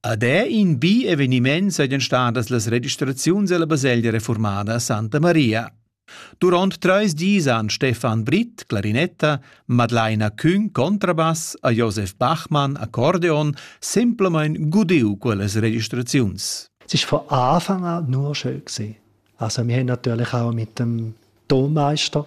Ad è in bi eveniment sajan stadas las registraziuns ella baselgia reformada Santa Maria. Durant treis dis han Stefan Britt, clarinetta, Madlaina Küng, contrabass, a Josef Bachmann, accordeon, semplamein gudiu quellas registraziuns. Es war von Anfang an nur schön gewesen. Also wir haben natürlich auch mit dem Tonmeister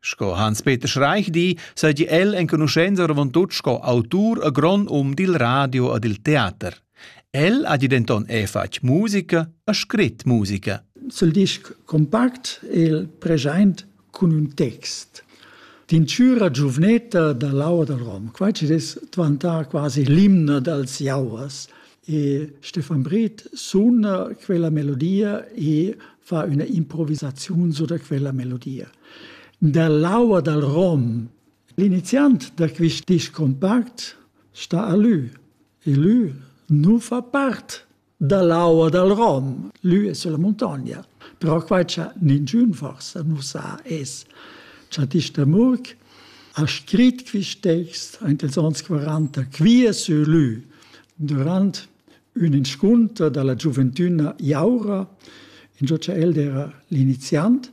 Sco Hans-Peter Schreich di, seigi el enconuschenza oravontut sco autur a grond um dil radio e dil teater. El ha denton è fatg musica e scrit musica. Sul disc compact el present cun un text Tincüra giuvnetta da l'aua dal Rom. Quai ci dess dvantà quasi l'imna dals jauers. E Stefan Brith suna quella melodia e fa üna improvisaziun su da quella melodia. Dall'aua dal rom, l'iniziant da quist disc compact sta a lü e lü nu fa part dall'aua dal rom. Lü es sulla muntogna. Però quai cha ninchün forsa nu sa es cha disch da Murk ha scrit quist text aint ils ons 40 quia sur lü durant ün inscunter da la giuventüna Jaura, ingio cha el d'eira l'iniziant,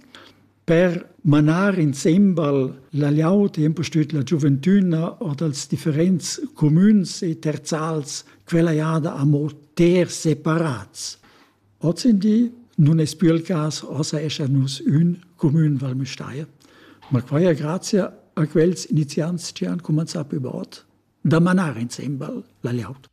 per manar insembel la liaud e impustüt la giuventüna or dals differents cumüns e terzals quella jada amo ter separats. Ozendi nun es pü il cas, ossa eschan nus ün cumün Val Müstair. Ma quai es grazia a quels iniziants chi han cumanzà plü bod da manar insembel la liaud.